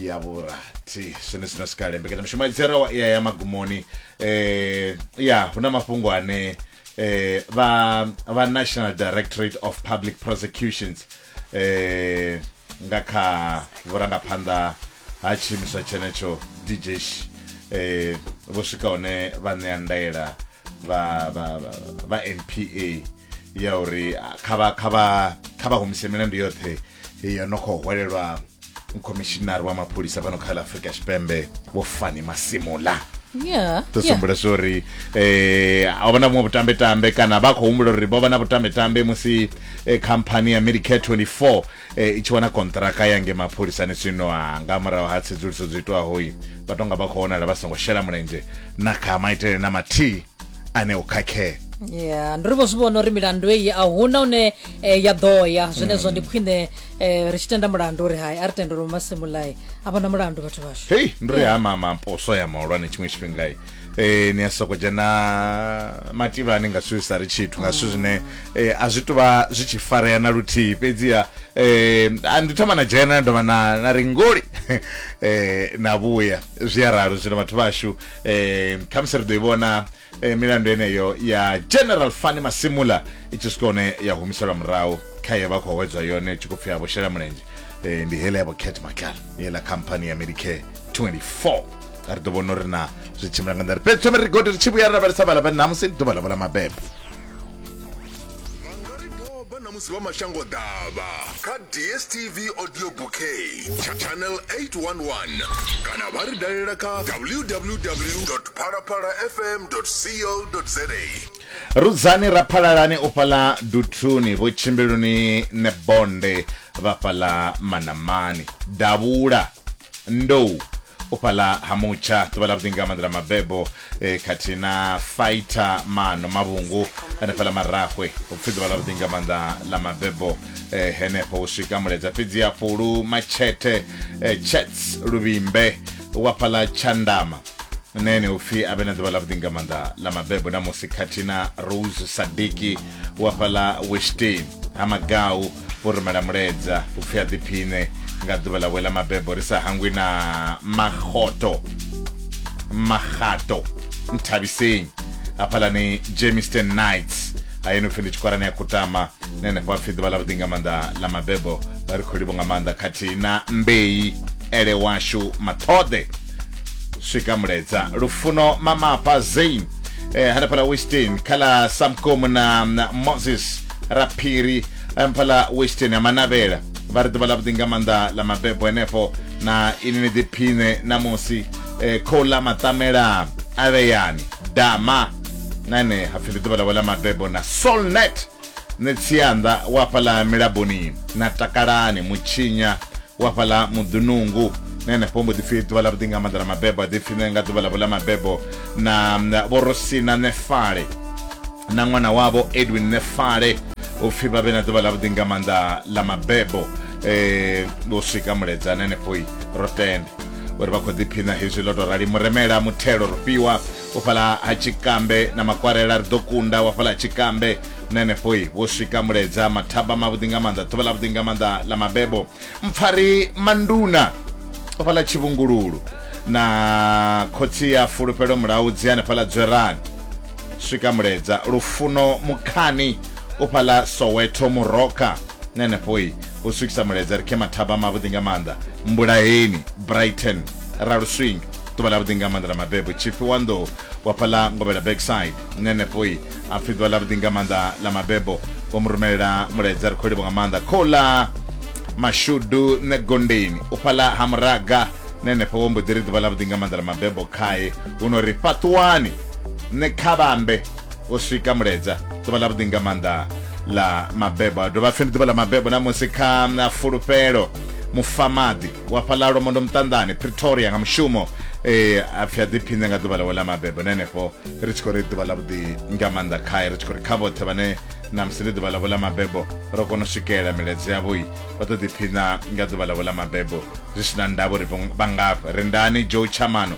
ya vhurathi zwine zwino sikale mbekanyamushumo ya dzerawa iya ya magumoni eh ya hu na mafhungo ane eh vha vha national directorate of public prosecutions eh nga kha vhurangaphanḓa ha tshiimiswa tshenetsho djsh eh vho swika hone vha ṋea ndaela vha vha vha- vha npa ya uri ah, kha vha kha vha kha vha humise milandu yoṱhe yo no khou hwelelwa khomishinari wa mapholisa fhano kha ḽa afurika tshipembe vho fani masimula Yeah. ḓo yeah. sumbula zwa uri eh a vha na vhuṅwe vhutambetambe kana vha khou humbula uri vho vha na vhutambetambe musi eh, khamphani ya medicare 24 eh, i tshi wana kontraka ya nge mapholisani zwino ah, nga murahu ha tsedzuluso dzo itwaho i vha tonga vha khou vhonala vha songo shela mulenzhe na kha maitele na mathihi ane o khakhea ya ndi ri vho zwi vhona uri milandu eyi a huna une eh, ya ḓo ya zwenezwo ndi khwine eh, ri tshi tenda mulandu uri hai a ri tendele masimulai a vhona mulandu vhathu vhashu hei ndi ri ha mama poso ya mahulwane tshiṅwe tshifhinga i Eh, ni a soko dzhena mativhani nga zwithu zwi sa ri tshithu nga zwithu zwine eh, a zwi tuvha zwi tshi farea na luthihi fhedziha eh, a ndi thoma na dzhena na dovha na na ri ngoli eh, na vhuya zwi a ralo zwino vhathu vhashu eh khamusi ri ḓo i vhona eh, milandu yeneyo ya general fani masimula i tshi swika hone ya humiselwa murahu kha ye vha khou hwedzwa yone i tshi khou pfi a vho shela mulenzhe eh, ndi hele ya vho cat macal yeḽa khamphani ya medicare 24 a ri ḓo vhona uri na zwi tshimbila nga nḓila fhedzi thome ri gode ri tshi vhuya ra lavhelesa vhala vha namusi ndi ḓuvha ḽavho ḽa mabebo vha nga ri doba na musi vha mashango ḓavha kha dstv audio bouquet tsha channel 811 kana vha ri dalela kha www phalaphala fm co za rudzani raphalalani u fhaḽa duthuni vho tshimbiluni ne bonde vha fhaḽa manamani davhula ndou u fhaḽa ha mutsha ḓuvha ḽa vhuḓinga maḓela mabebo e, khathihi na Fighter Mano Mavhungu hanefhaḽa Marahwe, hupfi ḓuvha ḽa vhuḓi nga maanḓa ḽa mabebo e, henefho hu swika Muledza fhedzi ya Fhulu Matshete e, Chats Luvhimbe wa fhaḽa Tshandama na ene hupfi a vhe na ḓuvha ḽa vhuḓi nga maanḓa ḽa mabebo na musi khathihi na Rose Sadiki wa fhaḽa Westin ha Magau vho rumela muledza upfi a ḓiphiṋe nga ḓuvha ḽawe ḽa mabebo ri sa hangwi na magoto magato nthabiseng hafhalani jameson knights hayeni upfi ndi tshikwarani ya kutama na henefho apfi ḓuvha ḽa vhuḓi nga maanḓa ḽa mabebo vha ri khou livho nga maanḓa khathihi na mbei ele washu maṱhoḓe swika muledza lufuno mamapa zain eh, hanefhala westin khala samkomu na na moses ra phiri mphala western ha manavhela vha ri ḓuvha ḽavhuḓi nga maanḓa ḽa mabebo henefho na ini ni ḓiphiṋe ṋamusi eh, khou ḽa maṱamela a vheyani dama na ene hapfi ndi ḓuvha ḽawe ḽa mabebo na solnet ni tsianda wa fhaḽa milaboni na takalani mutshinya wa fhaḽa muḓunungu na henefho mbo ḓipfi ḓuvha ḽa vhuḓi nga maanḓa ḽa mabebo a ḓipfi ne nga ḓuvha ḽavho ḽa mabebo na na vhorosina nefale na ṅwana wavho edwin nefale u pfhi vha vhe na ḓuvha ḽavhuḓi nga maanḓa ḽa mabebo um u swika muledzana henefhoi ro tenda uri vha khou ḓiphina hezwi ḽo tou rali muremela muthelo ro fhiwa u fhala ha tshikambe na makwarela ri ḓo kunda wa fhala ha tshikambe na henefhoi vho swika muledza mathaba mavhuḓi nga maanḓa ḓuvha ḽavhuḓi nga maanḓa ḽa mabebo mpfari manduna u fhala tshivhungululu na khotsi ya fulufhelo mulaudzi hanefhala dzwerani swika muledza lufuno mukhani u fhaḽa soweto muroka na henefhoi u swikisa muledza ri khe mathaba mavhuḓi nga maanḓa mbulaheni brighton raluswing ḓuvha ḽavhuḓi nga maanḓa ḽa mabebo tshifhi wa nḓou wa fhaḽa ngovhela backside na henefhoi a pfhi ḓuvha ḽavhuḓi nga maanḓa ḽa mabebo vho mu rumelela muledza ri khou livho nga maanḓa khoula mashudu nṋe gondeni u fhaḽa ha muraga na henefho wo mbo ḓi ri ḓuvha ḽavhuḓi nga maanḓa ḽa mabebo khae huno ri fhaṱuwani Nṋe kha vhambe u swika muledza ḓuvha ḽa vhuḓi nga maanḓa ḽa mabebo a dovha pfhi ndi ḓuvha ḽa mabebo na musi kha na fulufhelo mufamaḓi wa fhaḽa lwamondo muṱanḓani pretoria nga mushumo eh, a pfhi a ḓiphiṋe nga ḓuvha ḽawe ḽa mabebo na henefho ri tshi khou ri ḓuvha ḽa vhuḓi nga maanḓa khae ri tshi khou ri kha vhoṱhe vhane na musi ndi ḓuvha ḽavho ḽa mabebo ro kona u swikelela miledzo yavhoi vha ḓo ḓiphiṋa nga ḓuvha ḽavho ḽa mabebo zwi si na ndavha uri vha ngafha rindani joe chamano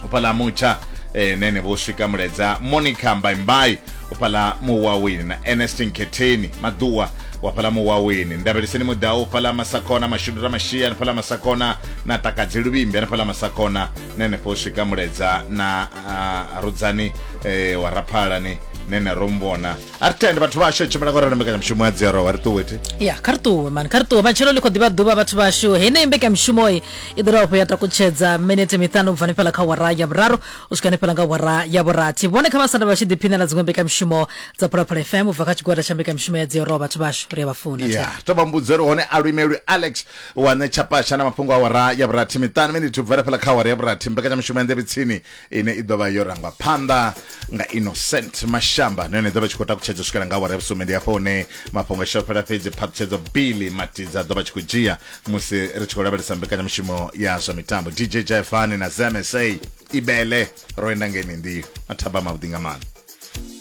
u fhaḽa mutsha eh, nene vho swika muledza monica mbaimbai u fhaḽa muwaweni na ernestin khetheni maḓuwa wa fhaḽa muwaweni ndabeliseni mudau u fhaḽa masakona mashudu ramashia ni fhaḽa masakona na takadzi luvhimbi ni fhaḽa masakona nene fho swika muledza na ah, rudzani eh, wa raphalani nene ro mvona a ri tende vhathu vhashu tshimbila ngorana mbekanyamushumo ya dzero wa ri ṱuwe thi ya kha ri ṱuwe mani kha ri ṱuwe matshelo ḽi khou ḓivha ḓuvha vhathu vhashu heneyi mbekanyamushumoyi i ḓo dovha ya takutshedza minete miṱanu ubva hanefhala kha wara ya vhuraru u swika hanefhala nga wara ya vhurathi vhone kha vhasanda vha tshi ḓiphinela dziṅwe mbekanyamushumo dza phalaphala fm ubva kha tshigwada tsha mbekanyamushumo ya dzioroa vhathu vhashu ri a vha funa ya to vha mbudzo ri hone a luimelwi alex wa ṋetshapasha na mafhungo a wara ya vhurathi miṱanu minete ubva hanefhala kha wara ya vhurathi mbekanyamushumo ya nḓevhitsini ine i ḓovha yo rangwa phanḓa nga innocent mashamba na yone ḓovha tshi khou takutshedza swikela nga awara ya vhusumbe ndi hafho hune mafhungo a fhela fhedzi phaṱhutshedzo billy matidza ḓovha tshi khou dzhia musi ri tshi khou lavhelesa mbekanyamushumo ya zwa mitambo dj jefani na zmsa ibele ro enda ngeni ndi mathaba mavhuḓi nga maanḓa